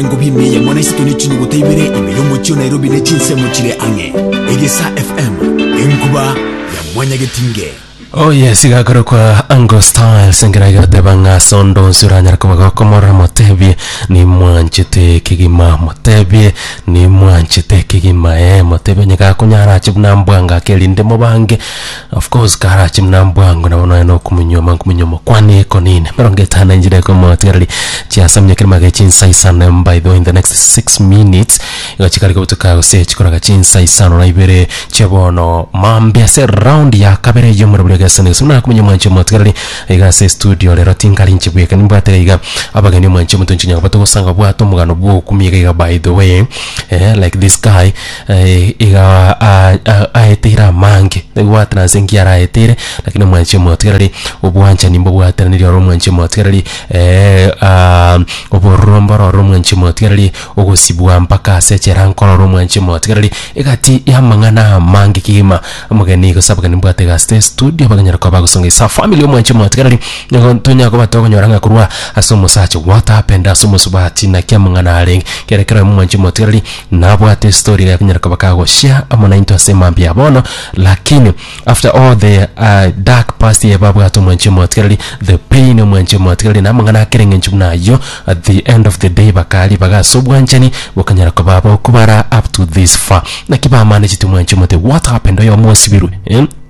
Engobi ime eye mono isike ne chinyugute ibere ime y'omochie o Nairobi ne chinsemo chire ang'e. Egesa FM, enkuba ya mwanyagetinge. Oh yes, igakorokwa Ango Styles engera igateba ng'a sondo onsi oranyare koba gokomorora motebie nimwanchete kegima motebie nimwanchete kegima eh motebie onye gakonyara ache buna mbwangake erinde mobange Of course karache muna mbwango nabo nonya na okomonywoma nkomonywoma kwane ekonene emerongo etano na enchera ekemo motigareri chiasamia kerimo age chinsa isano by the way in the next six minutes igo chikare kobutuka gose chikoraga chinsa isano na ibere chia bono maambia ase round ya kabere eyio omorero buna egesani gose buna akomonywoma mwanche motigareri iga ase estudio rero tinkarinche bweka nimbwate iga iga abageni omwanche omotonche nyagobate gosanga bwate omogano bwa okumia iga iga by the way eh like this guy iga aeteire amange nagobwatana ase enki araeteire, lakini omwanchi omotigareri obwanchani mbobwatananiri oro omwanchi omotigareri obororo mboro oro omwanchi omotigareri, ogosibwa mpaka ase echeranka oro omwanchi omotigareri, egati ya amang'ana amange kegima. Omogeni gose abageni mbwate iga asete estudio bakonyara koba bagosonga is a family omwanchi omotigareri, nigo ntonyara koba tokonyora ng'a korwa ase omosacha what happened ase omosubati naki amang'ana arenge, kera ekero omwanchi omotigareri. Nabwate estory ria konyara koba ka goshare amo nainto ase mambia ya bono lakini after all the uh, dark past ye babwate omwanchi omotigareri the pain omwanchi omotigareri na amang'ana akere ng'enchu buna ayio at the end of the day bakaa ribaga ase obwanchani bokanyara koba bokobara up to this far naki bamanagete omwanchi omote what happened oyo omosibirwe eh?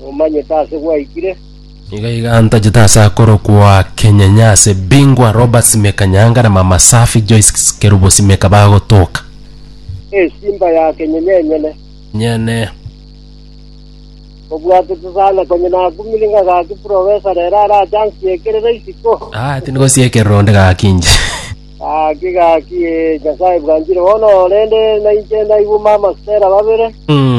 Nomanyete aase gwaikire? Iga iga ntachete ase akorokwa Kenyenya ase Bingwa Robert Simeka Nyanga na Mama Safi Joyce Kerubo Simeka bagotoka. Esimba ya Kenyenya enyene. Nyene. Obwatete sana konye nakumire nga gaki professor rero arache ansiekerere isiko. Ah, tindi gosiekerera onde gaki inche. Gaki gaki ee, Nyasae bwanchire bono rende nainche naigwe mama Stella babere. Mm.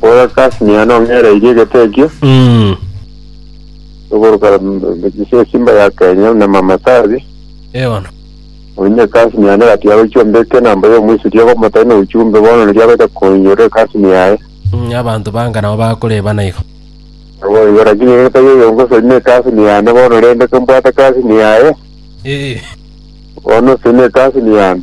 Bora Kasmia nong'ereirie egete ekio, Mm. ogoruka ase esimba ya Kenya buna Mama Sari, Eh, bono. onye Kasmia negati agochia ombeke namba ya Omoisraeli ogomotai na ochumbe bono riria agoeta koinyora Kasmia yaye. Mm, abanto banga nabo bakoribana igo. Naboigo lakini ere tari oyongosorina Kasmia yane bono rende kombwate Kasmia yaye, Eh, bono osorina Kasmia yane.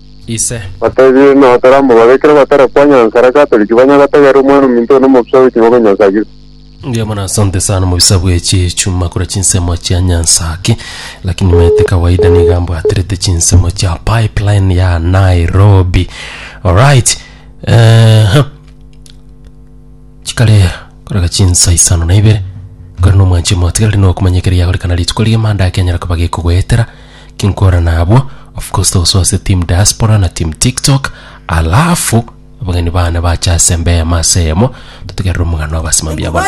ise. Batebie, Nao toramobaro, ekero batara kwanya nsara Katoliki, banya gotegerera Omwana-o-minto one omobisa bwe chingoko Nyansakire. Mbuya mono asante sana omobisa bwe chichuma kora chinsemo chia nyansaki lakini maete kawaida niga mbwaterete chinsemo chia pipeline ya nairobi alright ehe chikare koraga chinsa isano na ibere kore nomwanche omotigareri nokomanya ekero yagorekana rituko riamanda ekenyara koba gekogoetera Kinkora nabwo of course togosoa ase team diaspora na team tiktok alafu abageni bane bache ase embeyo amo ase eyemo totigerere omogano obasimami abana.